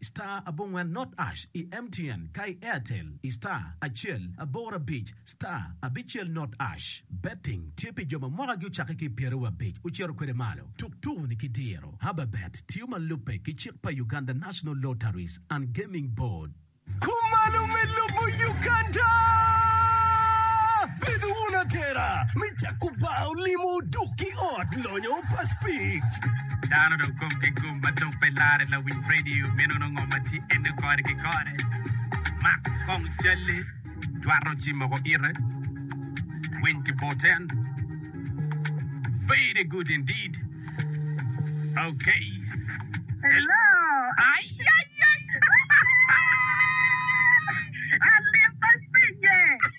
I star abongwen not ash i MTN ka i Airtel i star acel aboro abic star abicel not ash. Betting tye pi jo ma mwakagi ocakke ki i pyere wa abic ocito kwede malo. Tuk tuku-ni ki diro. Hababet tiyo ma lubbe ki cik pa Uganda National Lotteries and Gaming Board. Kumalo me lubo Uganda! Bed wun atera me cako bar olimo duk ki ot lonyo pa spik. Dano dong komgi gum. Ma dok pe larre lawiny radio meno nongo ma tye ene kore ki kore. Mak kong calle, twato ci moko ite, winy ki boten. Very good indeed. Okay. Hello. Ayayay. Alimba cinge.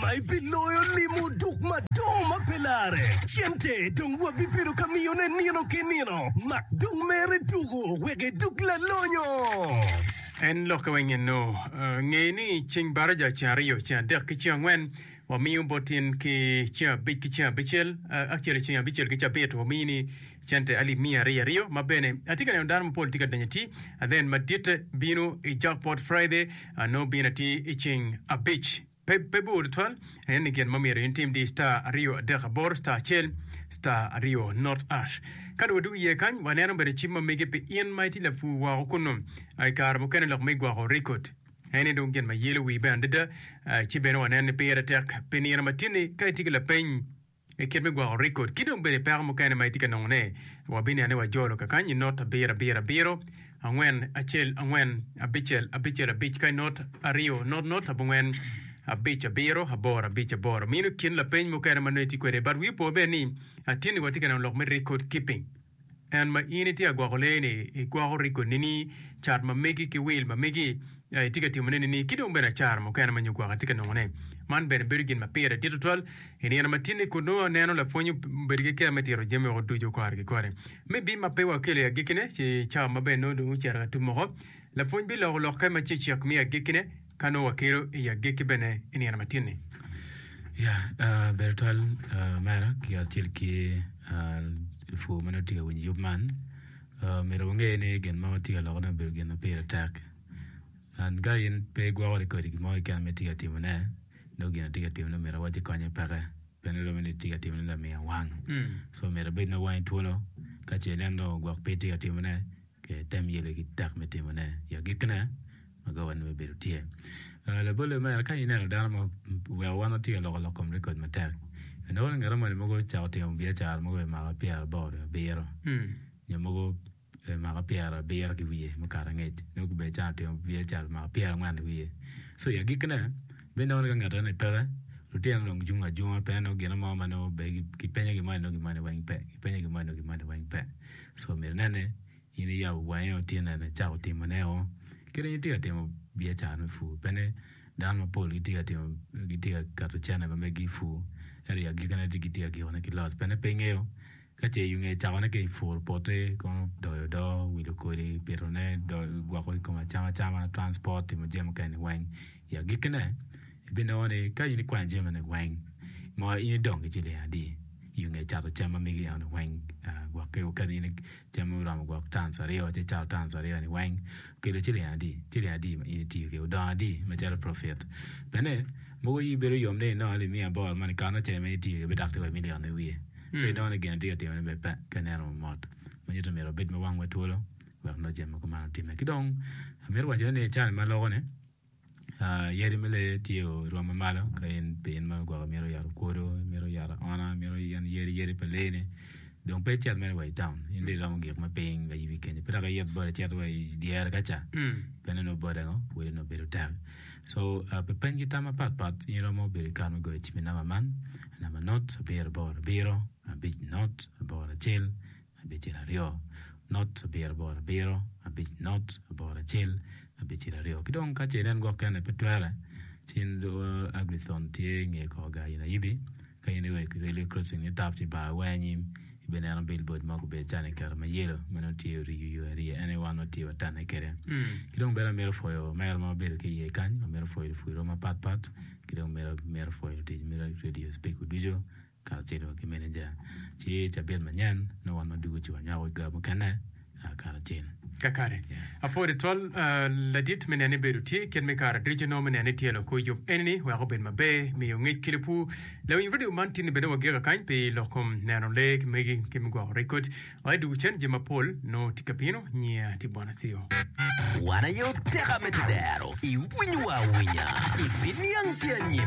ma ebiloyo limo duk madongo ma pe lare. Cente dong wabibedo ka miyone nino ki nino, mak dong mere duku wek eduk lalonyo. En lokke weng eno, nge ni ceng baraja, ceng aryo, ceng adek ki ceng angwen wamiyo botin ki ceng abic ki ceng abicel, actually ceng abicel ki cabit wamiyi ni cente alip miya aryo aryo. Ma bene atye ka neno dano mapol tye ka donyo atir, and then maditte bino i jackpot Friday, nongo bino atir i ceng abic. Pe bor tutwal, aye ni gin ma myero in itim dic star aryo adek aboro star acel star aryo not ash. Ka dong wadwogo iye kany, waneno bene cim ma mege pi in ma itye lapur woko kunnu. I kare mukene lok me gwoko rekod en ni dong gin ma yelo wii bene adada, ci bene waneno ni pire tek pi nino matini ka itye ki lapeny. I kit me gwoko rekod, ki dong bene peko mukene ma itye ka nongo ne, wabinian ni wajolo kakany i not abiro abiro abiro, angwen acel angwen, abicel abicel abic ka i not aryo not not abongwen abic abiro aboro abic aboro. Mino kin lapeny mukene ma nongo itye kwede but wi opo bene ni atye ni watye ka neno lok me record keeping. En ma in itye ka gwoko lee-ni, igwoko rigo nini, cat ma megi ki wil ma megi, ya itye ka timone nini, ki dong bene acara mukene ma nyo gwoko itye ka nongone? Man bene bedo gin ma pire dit tutwal i nino matini kun nongo aneno lapwony obedo ki kero me tito jami woko ducu kore ki kore. Me bim ma pe wakelo i agekkine, ci cawa ma bene nongo dong ocito ka tum oko, lapwony biloko lokke ma cecek me agekkine, Ka nongo wakelo i agikki bene i nino matin-ni. Ya, ah, bedo twal ah, mera ki kacel ki ah, lupur ma nongo tye ka winyo yub man, ah, myero wange ni gin ma watye ka lokone obedo gin ma pire tek. An ka in pe igwokori kodi gin mo keken ma itye ka timone, nongo gin atye ka timone omyero awac ni konye peke. Pe ni romo ni itye ka timone lamiya wang. So myero abed nongo wangi twolo, ka ce ineno dong ogwok pe itye ka timone, kong item yele ki tek me timone i agikkine. Magawani me bedo tye. Ah, labolle mere, ka ineno dano ma oweko wan watye ka loko lok kom rekod matek, inongo ni ngat moni mogo ocako timo biacara mogo i mwaka pyeraboro nyo abiro, nyo mogo i mwaka pyerabiro ki wiye mukato angec, nyo kobedi cen otimo biacara pi mwaka pyerangwen i wiye. So i agikkine, ibinongo ni ka ngat enoni peke, lutino dong cung acunga pe nongo gino mo ma nongo obedo ki penye gin moni nongo gin moni weng pe, gipenye gin moni nongo gin moni weng pe. So myero inen ni. In iyabo wangi o tin eni icako timo ne o kit dong itye ka timo biacara me pur pene dano mapol gitye ka timo gitye ka keto cene ma megi ipur ento i agiki ne gitye ka giko ne ki loss pene pe ingeyo ka ce iyunge icako ne ki puro poti kono doyo odo wilo kodi pito ne doyo gwoko i kom acama cama transport timo jami mukene ni weng i agiki ne ibinongo ni ka in ikwanyo jami magi ni weng mo in idong ki ciling adi iyunge cato cam ma megi eno ni weng gwok ki kadi Jami ma oromo gwok tans aryo ci cato tans aryo-ni weng okelo ciling adi? Ciling adi ma in itiyo kwede? Odongo adi macalo profit? Bene, mogo iyi bedo yom ni inongo ni miya bor moni kato na caji ma in itiyo kwede pe dok tye wa i milion me wiye. Ci inongo ni gin atye ka timone bene pe ka ineno wa mot. Ma nyuto ni myero wabed ma wangwa twolo wek nongo jami ma kuman otimme. Ki dong, amito wacone ni i carani ma loko-ni, yadi me lee tye oromo malo ka in pe in ma lugwok imito yat okodo, imito yat aona, imito yen yadi yadi pa lee ni dong pe icit mere wa i taun in dong iromo gik ma piny ma yubi kenyo pe dok iyot bot icito wa i dyere ka ca pien onongo bote ngo pwod onongo bedo tek co pe peny ki tam ma pat pat in iromo bedo ki kare me goyo cim i namba man namba nut abiro aboro abiro abic nut aboro acel abicel aryo not abiro aboro abiro abic not aboro acel abicel aryo ki dong ka ce nen gwok kene pe twere ci in Agri-thon tye i nge kor gar nyo ayibi ka in iweko i railway crossing ni tap ci ibar awar anyim ibineno billboard mo gubedo calo ni kiketo ma yelo ma nongo tye oriyo yo ariya ene wan watye wa tenne kwede ki dong bene amito pwoyo omera ma wabedo ki iye kany amito pwoyo lupwonnywa mapatpat ki dong amito pwoyo lutic me radio speaker ducu kacelo ki meneja, ci i cabit manyen nongo wan ducu ci wanywako ga mukene karacel. Kakare, apwod itwal ladit me neno ni bedo tye kit me kara ducu nongo me neno ni tyelo kor yub enini weko obed maber, miyo ngec ki lupwu. Lawiny radio man tye ni bene wagika kany pi lok kom neno lee ki megi ki me gwoko rekod wa i duk cen jami mapol nongo tye ka bino. Nyinga tye Bonacio. Wan aye oteka me tudero, iwinyo wa awinya, ibiniang ki anyim.